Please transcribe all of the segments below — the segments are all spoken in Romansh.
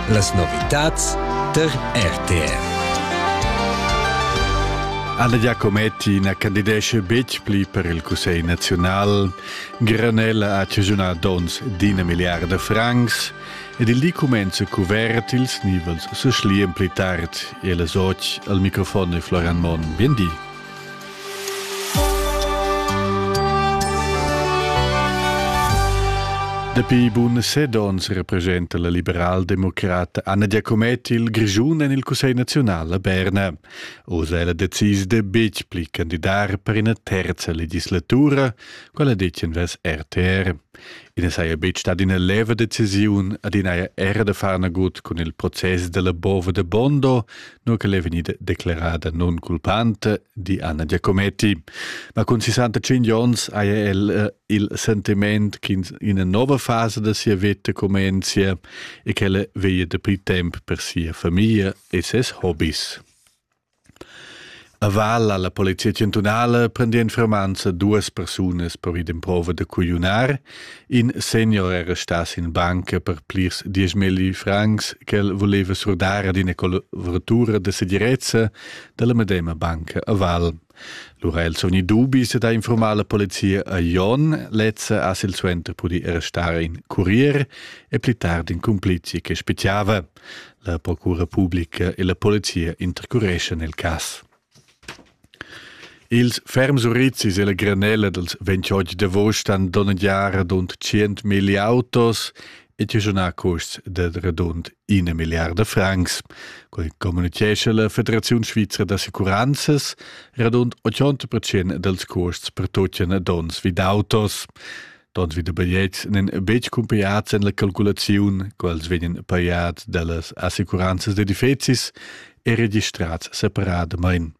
Las novitads tar RTR. Alla Giacometti na candidesce betg pli per il Cussegl nazional. Granella ha cigiunà dons d'ina miliarda francs ed il di cumenza cuvert ils nivels se schlian pli tard e las och al microfon e Florian Mon. Bien di. Dapi bun set ons representa la liberaldemocrata Anna Giacomet il Grischun en il Cussegl naziunal a Berna. Oz è la decis de betg pli candidar per ina terza legislatura, quella detien vers RTR. I saja betg stat ina leva decisiun ad inaja era da far nagut cun il process della Bova de Bondo, nua ch'el è vegnida declerada nunculpanta, di Anna Giacometti. Ma cun 65 onns haja el eh, il sentiment che ina nova fasa da sia vita comincia e ch'ella veglia da pli tempo per sia famiglia e ses hobbies. A val alla polizia chantunala prendien fermanza duas persunas per id improva da cugliunar. In senior era stas in banca per plirs dieschmilli francs ch'el voleva surdar ad ina collaboratura de segirezza dalla medema banca a val. Lura el sogni dubis da informar la polizia a Jon, lezza a sil suenter pudi restare in curier e pli tard in complici che speciava. La procura publica e la polizia intercureschan il cass. Ils ferms urizis e la granella dals 28 d'agost han donnegià radund 100.000 autos e tischunà custs da radund ina milliarda francs. Quai communitgescha la Federaziun svizra d'assicuranzas radund 80% dals custs per tuttina donns vid autos. Tot vi da bigliets n'en betg cumpiads en la calculaziun, quels vegnan pajads dallas assicuranzas d'edifizis e registrads separadamain.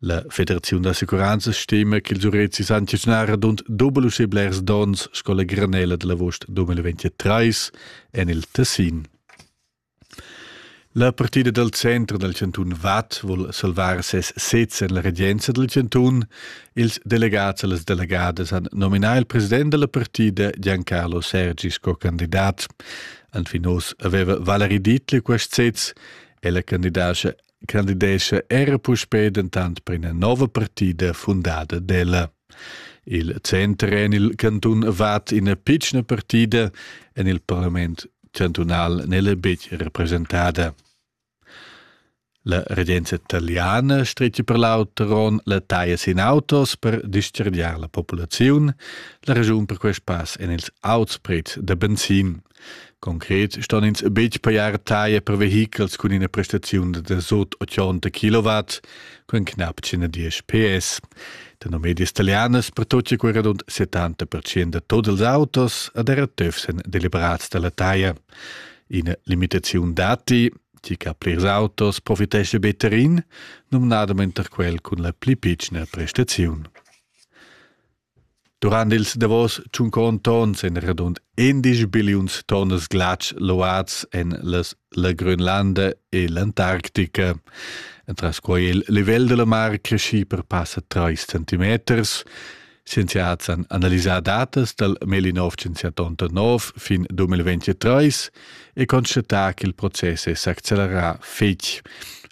La Federaziun d'assicuranzas stima ch'ils urezis han giagnarà dund double uschè blers dons sco la granella da l'agost 2023 en il Tessin. La partida dal center dal chantun Vad vul salvar ses sez en la regenza dal chantun. Ils delegads e las delegadas han nominà il president da la partida Giancarlo Sergi sco candidat. Anfin oz aveva Valerie Dietli quest sez. Ella candidatscha candidescha era puspei dentant per ina nova partida fundada d'ella. Il center en il cantun Vad ina pitschna partida, en il parlament chantunal n'è betg representada. La regenza italiana stretga per l'auteron la taglia sin autos per dischargiar la populaziun. La ragiun per quest pass en ils auts prezs da benzin. Concret ston ins betg pajar taglia per vehichels cun ina prestaziun da sut 80 kW cun knapp 110 PS. Tenor medias italianas pertutga quei radund 70% da tut ils autos ed era tufs èn deliberats dalla taglia. Ina limitaziun datti, tgi che ha plirs autos profitescha better in, numnadament er quel cun la pli pitschna prestaziun. Durant ils davos tschunconts ons ein radund indisch billiuns tonnas glatsch luads en las, la Grönlanda e l'Antarctica. Entras quei è il livel dalla mar cresci per passa trais centimeters. Scienziads han analisà datas dal Melinov 179 fin 2023 e constatà ch'il process è s'accelerà fetg.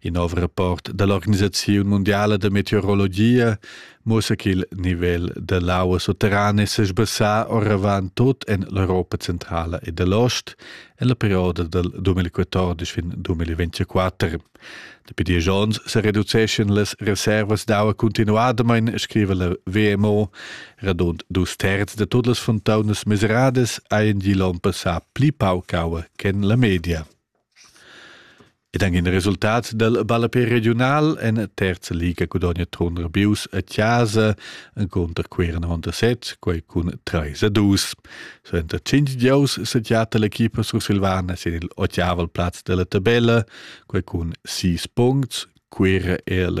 In nov rapport da l'Organisaziun mundiala da meteorologia muossa che il nivel da l'aua sutterrana è sesbassà oravant tut en l'Europa centrala e da l'ost en la perioda dal 2014 fin 2024. Dapi diesch onns se reduceschan las reservas d'aua continuadamain, scriva la WMO. Radund dus terz da tutte le fontaine miserades haien die l'on passà pli pauc aua che la media. Ed anche il resultat del ballapé regional en terza liga gudogna Trun Rabius a Chiasa contro Queira 97, quei cun 3 a 2. Suenter 5 giaus sediata l'equipa sursilvana sin il ottaval plaz della tabella, quei cun 6 punts, Queira è la